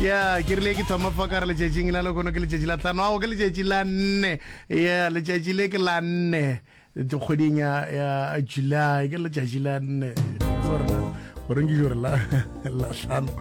ya ke rile ke thoma fa ka re letšatšing la lekono ke letšatši la tlhano ao ke letšatši la nne ya letšatši le ke la nne kgweding ya ya july ke letšatši la nne goreng ke jore la la tlhano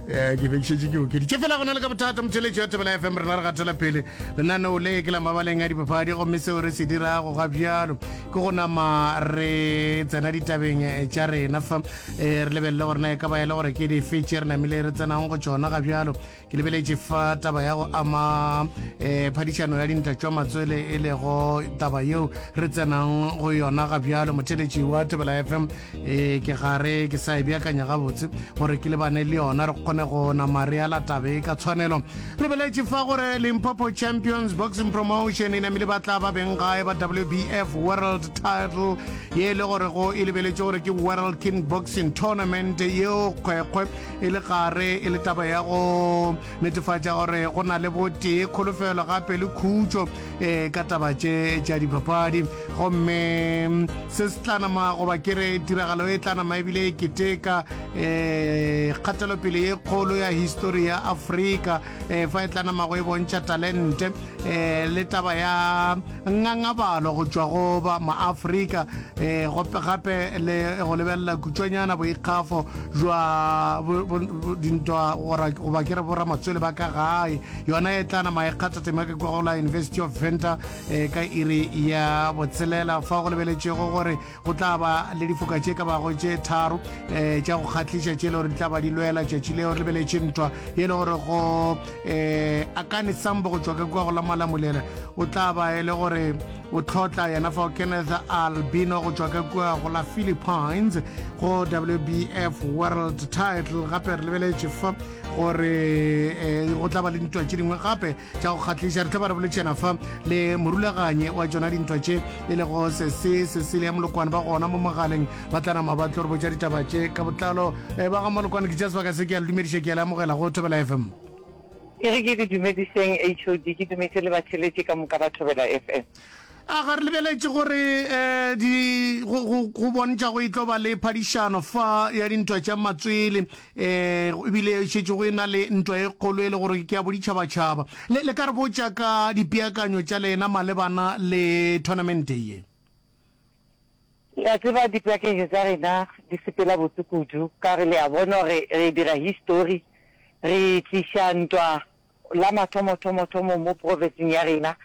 eh, ke bekišetše ke okeditše fela gona le ka bothata motšheletši ya tebela fm rena re gatela pele lenaneo le ke la mabaleng a dipapadi gomme seo re se dirago ga bjalo ke go nama re tsena ditabeng eh, tša rena fa E re lebelele gore na e ka ba e le gore ke dife tše re namile re tsenang go tšona ga bjalo ke lebeletše fa taba ya go ama um phadišano ya dinta tšwa matswele e lego taba yeo re tsenang go yona ga bjalo motheletši wa tebela fm um ke gare ke sa e beakanya gabotse gore ke lebane le yona re kgone go nama re ala tabe ka tshwanelo lebeletše fa gore limpopo champions boxing promotion e namile ba tla ba beng gae ba wbf world title ye e le gorego e lebeletše gore ke World King Boxing Tournament yeo kgwekgwe e le gare e le taba ya go netefatša gore go na le botee, kholofelo gape le khutšo e ka taba tše tša dipapadi. Gomme se se tla nama goba ke re tiragalo e tla nama ebile e keteka e kgatelopele ye kgolo ya histori ya Afrika e fa e tla namago e bontšha talente eh, le taba ya ngangabalo go tšwa go ba maafrika eh, gope gape le go lebelela kutswanyana boikgafo jwa dintwa goba ke re boramatswele ba ka gae yona e tlana maekgatha tema ke kwagola university of venter eh, ka iri ya botshelela fa go lebeletšego gore Go tla ba le difoka tše ka bago tše tharo um tša go kgahliša tše e le gore di tla ba di lwela tšatši leo re lebeletše ntwa ye e le gore go um akane sambo go tšwa ka kua go la malamulela o tla ba e le gore o tlhotla yena fao kenneth albino go tšwa ka kua go la philippines go wbf world title gape re lebeletše fa gore um go tla ba le ntwa tše dingwe gape tša go kgatlhiša re tla ba re boletšana fa le morulaganye wa tšona dintwa tše e lego sese sesele ya molokwane ba gona mo mogaleng ba tla nama ba tlo re botša ditaba tše ka botlalo eh, ba ga molokwane ke tša sebaka se ke a le dumediša ke a le amogela go thobela fm e re ke di dumediseng hod ke dumetse le batheletše ka moka ba thobela fm A ga re lebeletše gore di go bontšha go e tlo ba le phadišano fa ya dintwa tša matswele ebile e šetše go e na le ntwa e kgolo e le gore ke ya boditšhabatšhaba le le ka re botša ka dipeakanyo tša lena malebana le tournamente ye ya tseba dipeakanyo tša rena di sepela botse kudu ka re le a bona gore re dira history re tliša ntwa la mathomothomothomo mo profetsing ya rena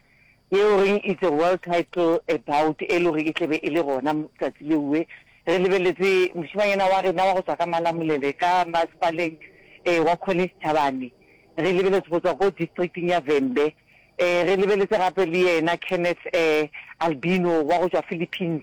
yeo re It's a World Title About e le gore e tle be e le gona tsatsi leue re lebeletse mošemanyana wa rena wa go tswa ka Malamulele ka masepaleng um wa College Thabane re lebeletse go tswa ko districting ya Vhembe um re lebeletse gape le yena Kenneth um Albino wa go tswa Philippines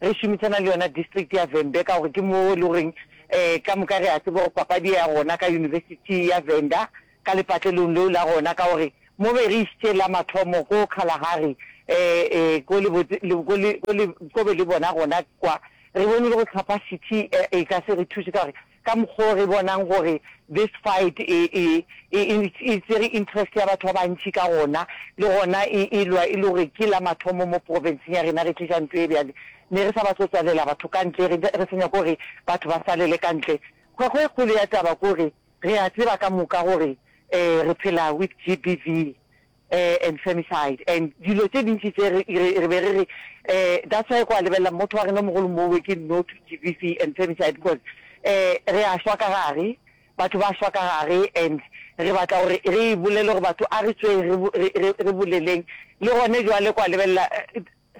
Re šomišana le yona district ya Vhembe ka gore ke moo e le goreng um ka moka re a tseba gore papadi ya gona ka University ya Venda ka lepatlelong leo la gona ka gore mo be re išitše la mathomo ko Kalahari um um ko be le bona gona kwa re bone le go Xhapha City e ka se re thuše ka gore ka mokgo re bonang gore this fight e e e e e tsere interest ya batho ba bantši ka gona, le gona e e lwa e le gore ke la mathomo mo province-ng ya rena re tliša ntho e bjale. Ne re sa batle go tswalela batho ka ntle, re re sa nyake gore batho ba salele ka ntle. Kgwekgo e kgolo ya taba ke gore re a tseba ka moka gore um re phela with GBV, and femicide and dilo tše dintši tše re be re re that's why kwa lebelela motho wa rena mogolo mowe ke no to GBV and femicide because um re a shwa ka gare batho ba shwa ka gare and re batla gore re bolele gore batho a re tsweng re boleleng le gone jwale kwa lebelela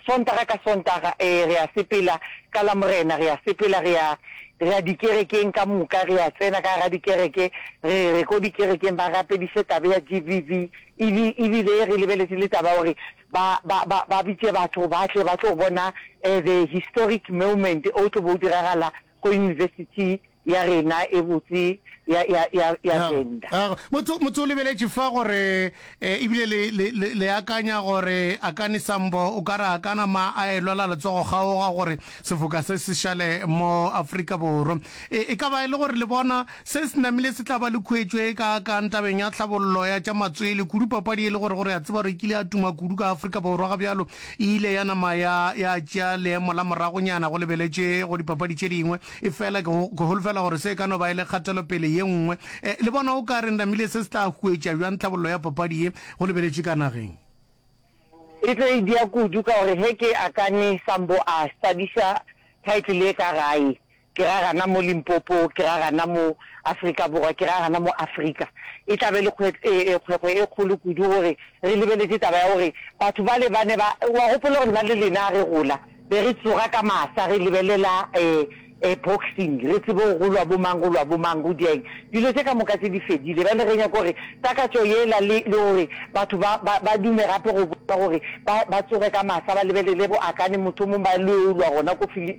Sontaga ka Sontaga, ee, re a sepela ka Lamorena, re a sepela, re a, re a dikerekeng ka moka, re a tsena ka gara dikereke, re, re ko dikerekeng ba rapediše taba ya GBV, ebi, ebile re lebeletše le taba ya gore ba, ba, ba, ba bitše batho ba tle ba tlo bona, eh, the historic moment o tlo be o diragala go Yunibesithi ya rena e botse ya, ya, ya, ya Ga, Venda. ga, motho, motho o lebeletše fa gore, e, ebile le, le, le, le akanya gore a ka ni Sambo o ka re a ka nama a e lwela letsogo kgaoga gore sefoka se se šale mo Afrika Borwa. E, e ka ba e le gore le bona. Se se namile se tla ba le khuetšo e kaakang tabeng ya tlhabollo ya tša matswele kudu, papadi e le gore gore ya tseba gore e kile ya tuma kudu ka Afrika Borwa ga bjalo e ile ya nama ya ya tšea leemo la moragonyana go lebeletšwe go dipapadi tše dingwe. Efela ke ke holofela gore se e ka no ba e le kgatelopele ye nngwe. Eh, le bona o ka re namile se se tla huetša bjang tlhabollo ya papadi ye go lebeletšwe ka nageng? E tlo e dia kudu ka gore ge ke akane Sambo a hlabiša title ye ka gae, Ke ra gana mo Limpopo, ke ra gana mo Afrika Borwa, ke ra gana mo Afrika. E tla be e le kgwekgwe e kgolo kudu gore re lebeletše taba ya gore batho bale ba ne ba, wa gopola gore nna le lena ga re gola be re tsoga ka masa re lebelela boxing, re tsebe gore go lwa bo mang, go lwa bo mang, go diaeng. Dilo tše ka moka tše di fedile. Bjale re nyaka gore takatšo yela le gore batho ba, ba, ba dume gape go bona gore ba, ba tsoge ka masa ba lebelele bo Akani mothomong ba lo yo lwa gona ko Fili,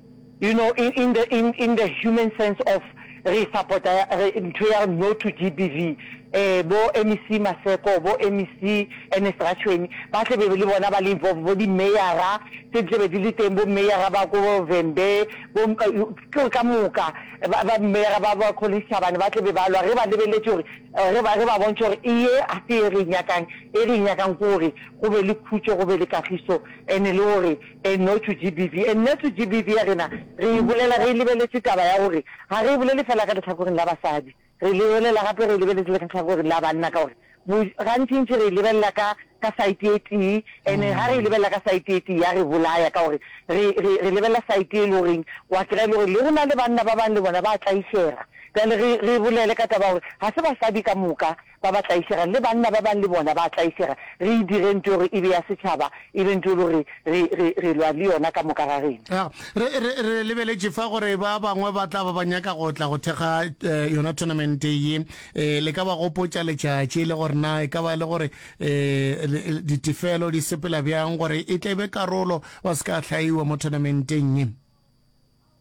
You know in in the in in the human sense of re supporta re ntho ya no to GBV eh bo MEC Maseko bo MEC Ernest Ratshweni ba tle be le bona ba le involved bo di mayora tse tle be di le teng bo mayora ba ko Vembe bo ke ka moka ba ba mayora ba ba Collins Chabane ba tle be ba lwa re ba lebeletse hore re ba re ba bontse hore eye a se e re nyakang e re nyakang gore go be le khutso go be le kagiso ene le hore Enotu GBV, Ennetu GBV ya rena re e bolela re lebeletše taba ya gore ga re e bolele fela ka lehlakoreng la basadi, re le bolela gape re e lebeletše le ka lehlakoreng la banna ka gore gantšintši re e lebelela ka ka saete e tee ene ga re e lebelela ka saete e tee ya re bolaya ka gore re re re lebelela saete e le goreng wa kry-a e le gore le go na le banna ba bangwe le bona ba tlaišega bjale re re bolele ka taba ya gore ga se basadi ka moka Ba ba tlaišega, le banna ba bangwe le bona ba a tlaišega. Re e direng ntho ye gore e be ya setšhaba, e be ntho ye le gore re, re, re lwa le yona ka moka ga rena. Ya, re, re, re lebeletše fa gore ba bangwe ba tla ba ba nyaka go tla go thekga e, yona thonamente ye. E, le ka ba gopotša letšatši, le gore na e ka ba e le gore e, le, ditefelo di sepela bjang gore e tle e be karolo, ba se ka hlaiwa mo thonamenteng ye.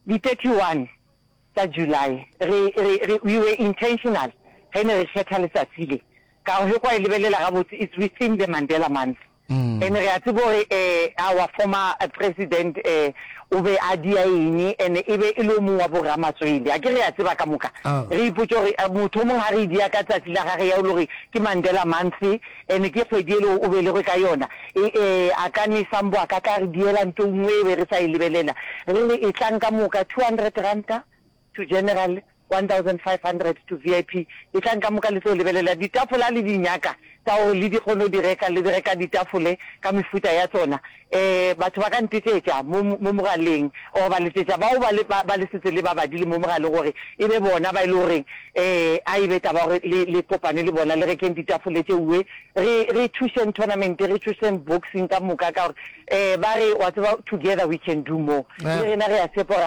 Di 31. Ka July, re, re, re, we were intentional ge ne re kgetha letsatsi le, ka gore ge kwa e lebelela gabotse, it's within the Mandela month. And re a tseba gore eh, our former President eh, o be a dia eng, and e be e le o mong wa bo-ramatswele. A ke re a tseba ka moka. Re ipotša gore motho o mong ga re e dia ka tsatsi la gage ya o le gore ke Mandela month, Ene ke kgwedi ele o belegwe ka yona. E, e, a ka ne sa mbo a ka tla re diela nto nngwe e be re sa e lebelela. Re re e tlang ka moka, two hundred ranta to general, one thousand five hundred to VIP. E tlang ka moka le tlo lebelela. Ditafole ha le di nyaka tsa gore le di kgone go di reka, le di reka ditafole ka mefuta ya tsona. Batho ba ka ntetšetša mo, mo mogaleng, or ba letšetša bao ba le, ba, ba le setse le ba badile mo mogaleng, gore e be bona ba e le gore a e be taba ya gore le, le kopane le bona, le rekeng ditafole tše uwe, re, re thušeng tournament, re thušeng boxing ka moka, ka gore ba re, wa tseba, together we can do more. Le rena re a tshepa gore